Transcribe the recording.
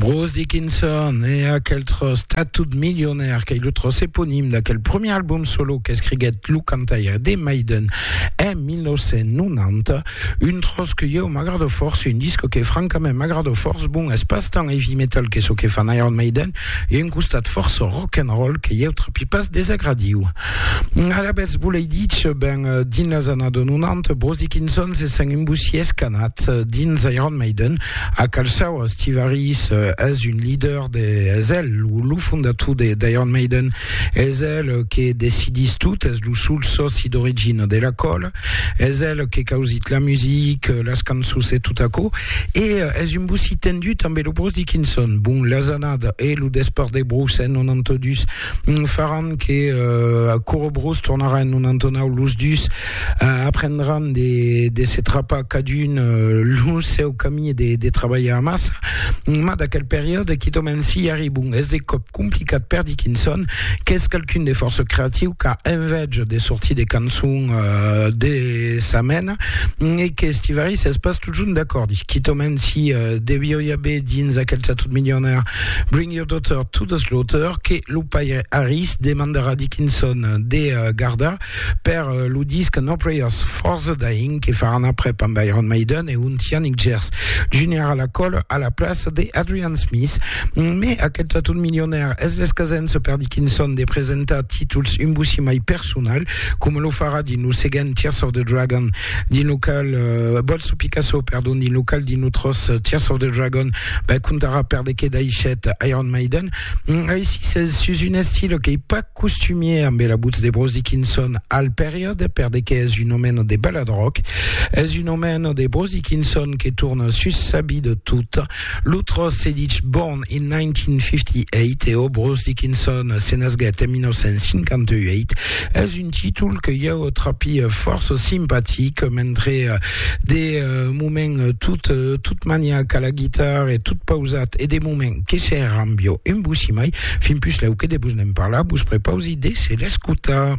Bruce Dickinson e aquel tros tatut milionaire qu'ei lo tros eponim d'aquel premier album solo qu'escriguèt lo cantaire de Maiden en 1990, un tros que ieu m'agrado fòrça, un disc que francament m'agrado fòrça, bon, es pas tant heavy metal que çò que fan Iron Maiden, e un costat fòrça rock and roll que ieu trapi pas desagradiu. Alavetz volei ditz, ben, dins las annadas 90, Bruce Dickinson se sent un bossí escanat dins Iron Maiden, a calçau a Steve Harris, es un leader de, es el lo fondator de d'Iron Maiden, es el que decidís tot, es lo sol sòci d'origina de la còla, Es el que causit la music, las cançons e tot aquò. E es un bossí tendut amb lo Bruce Dickinson. Bon, las annadas e lo despart de Bruce en 92 faràn que Coro Bruce tornarà en 99. Los dus aprendràn de, de se trapar cadun lo seu camí e de, de trabalhar amassa. Mas d'aquel periòde, quitòm en Sillari, bon, es de còp complicat per Dickinson qu'es qualqu'un de fòrça creatiu qu'a enveja de sortir de cançon euh, de sa mena e que Stivari s'es pas totjorn d'acord quitament si euh, devió i haver dins aquel satot milionaire Bring Your Daughter to the Slaughter que lo paire Harris demandarà Dickinson de euh, gardar Per lo disc No Prayers for the Dying que faràn aprèp amb Iron Maiden e un Yannick Gers Junior a la còla a la plaça de Adrian Smith. Me aquel taton milionèr es l'escasença per dir quin son de presentar títols un bocí mai personal, coma lo farà dins lo seguent Tears of the Dragon, dins lo qual uh, Bolso Picasso, perdon, dins lo qual dins lo tros uh, Tears of the Dragon, ben contarà per de que daishèt Iron Maiden. Mm, aicí s'es sus un estil que i pas costumier ambe la butz de Bruce Dickinson al periòde per de qu'es un omeno de ballad rock es un omeno de Bruce Dickinson que torna sus sa bi de tot lo tros se ditz Born in 1958 e o Bruce Dickinson se nasguèt en 1958 es un títol que ieu trapi fòrça simpatic mentre de moment tot maniac a la guitar e tot pausat e de moment Que se rambió en vos, si mai, fin pus lèu que de vos ne'n parlar, vos prepausi de se l'escotar.